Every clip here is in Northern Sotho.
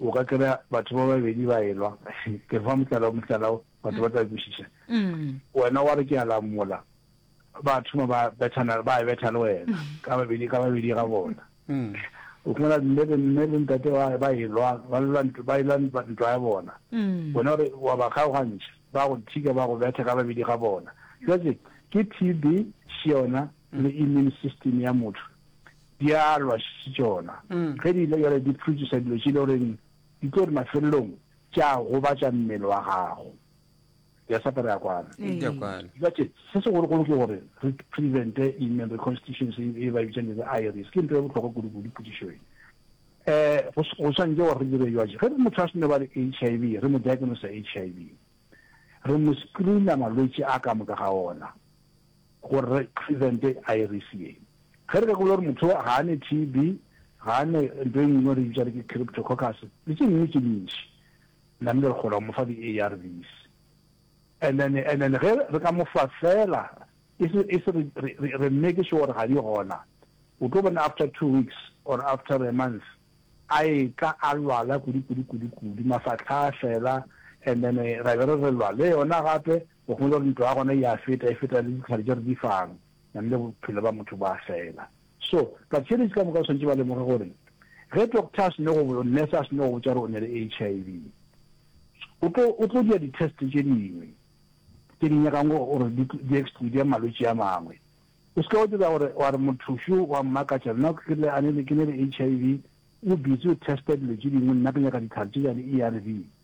O ka kry-a batho ba babedi ba elwa, ke re fa motlala o motlala o, batho ba tla kwešiša. Wena wa re ke a lamola, ba thoma ba bethana, ba betha le wena ka babedi ka babedi ga bona. O fumana mme le mme le ntate ba ba elwa, ba lwa ntwa, ba elwa ntwa ya bona. Wena o re wa ba kgaogantšha, ba go thika ba go betha ka babedi ga bona. Jwale ke TB, Shiona le immune system ya motho Dialwa se tšona, ge di ile bjale di phurutšiša dilo tše e le goreng di tlo re mafelelong tša gobatša mmele wa gago. Ke a sapa re a kwana. Ke a kwana. Jwale se segologolo ke gore re prevente email reconstitution se e ba e bitšang le IRS. Ke ntho e bohlokwa kudu-kudu potšišo e. Go swantše gore re dire jwang? Ge motho a se no ba le HIV, re mo diagnosa HIV, re mo screena malwetši a ka moka ga ona. Go re prevente iris ye. Ge re ka gopola gore motho ga a ne TB, ga a ne nto e nngwe re bitsa re ke cryptococcus, le tše dingwe tše dintši, namile re kgona go mo fa di-ARVs. And then, and then ge re ka mo fa feela, e se, e se re, re, re, re make sure gore ga di gona, o tlo bona after two weeks or after a month, a etla a lwala kudu, kudu, kudu, kudu, mafatlha a fela, and then ra be re re lwa le yona gape, O kgone gore ntlo ya gona e a feta, e feta le ditlhare tše re di fang, namile bophelo bja motho bo a fela. So, ba-Chinese ka moka ba swanetše ba lemoge gore ge doctor a seno go, nurse a seno go botša gore o ne le HIV, o tlo, o tlo dira di-test tše dingwe tše di nyakang gore di, di exclude malwetši a mangwe. O se ke wa dira gore wa re motho šo wa mmakatša, nna ke rile a ne le, ke ne le HIV, o busy o testa dilo tše dingwe, nna ke nyaka ditlhare tše bja di-ARV.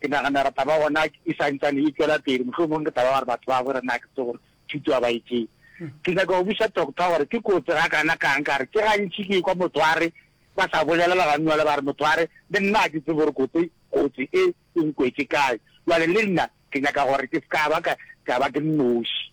Ke nagana gore taba gona e sa ntsane e tšwela pele, mohlomongwe ke taba ya gore batho ba bo re na ke tse gore thuto ga ba e tsebe. Ke nyaka go buša Doctor gore ke kotsi ga kana kang ka gore ke gantši ke kwa motho a re ba sa bolelela ga nywale ba re motho a re le nna ga ke tsebe gore kotsi kotsi e e nkwetše kae jwale le nna ke nyaka gore ke se ka ba ka ka ba ke nnoši.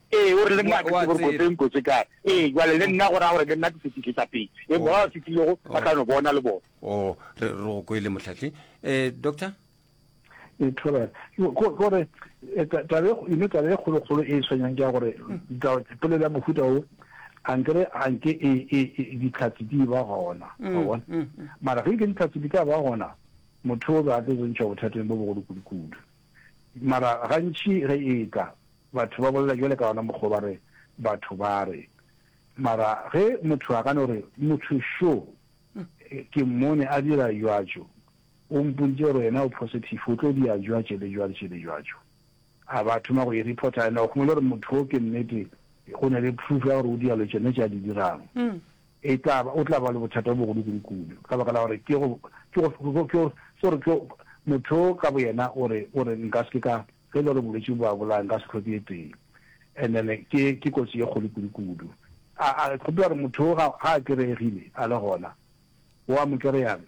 Ee, o re, Le nna ke seborokoteng ko se kae. Ee, jwale le nna go raya gore le nna ke setlitletsapedi. Ee, ba ba fitlhilego ba tla no bona le bona. O, re re go kwele, Mohlahli. Ee, Doctor? Ee, Thobela. Ke go- ke gore eh, ta- taba e kgo- you know, taba e kgolokgolo e e tshwenyang ke ya gore taba- polelo ya mohuta o a nkere a nke e- e- e- ditlhatsi di ba gona wa bona mara ge nke ditlhatsi di ka ba gona motho o be a tlo tsentšha bothateng bo bogolo kudu-kudu Mara gantši ge e etla batho ba bolela bjale ka ona mokgwa o ba re, Batho ba re. Mara ge motho a ka no re, Motho šo, ke mmone a dira jwatšo, o mpontše gore yena o positive, o tlo dia jwatše le jwatše le jwatšo. A ba thoma go e reporter, and o kgone le gore motho wo ke nnete, go na le proof ya gore o dia lo tšene tše a di dirang. E tla ba o tla ba le bothata bjo bogolo kudukudu ka baka la gore ke go, ke go, ke go, ke gore ke motho ka boyena o re, o re nka se ke ka, ge e le gore bolwetši bo a bolaya nka se hloke e tee. And then ke, ke kotsi e kgolo kudukudu. A, a kgopela gore motho wo ga, ga a kereegile a le gona, wo a mo kereyang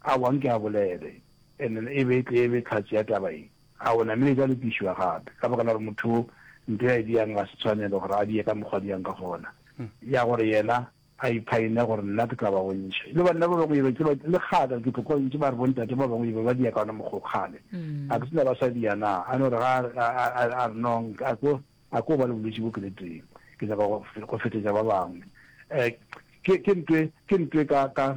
a bang ke a bolele and then e be e tle e be tlhatse ya taba ye. A o namile tša lokišwa gape, ka baka la gore motho wo nto ya e diang ga se tshwanelo gore a die ka mokgwa diang ka gona, ya gore yena a iphaine gore nna ke tla ba bontšha. Le banna ba bangwe e be ke ba le kgale ke tlo kwa ntše ba re bontate ba bangwe e be ba dia ka ona mokgwa kgale a ke se na ba sa dia na a no re ga a re nong a ko a ko ba le bolwetši bo ke le teng ke nyaka go fetetša ba bangwe ke ke ntwe ke ntwe ka ka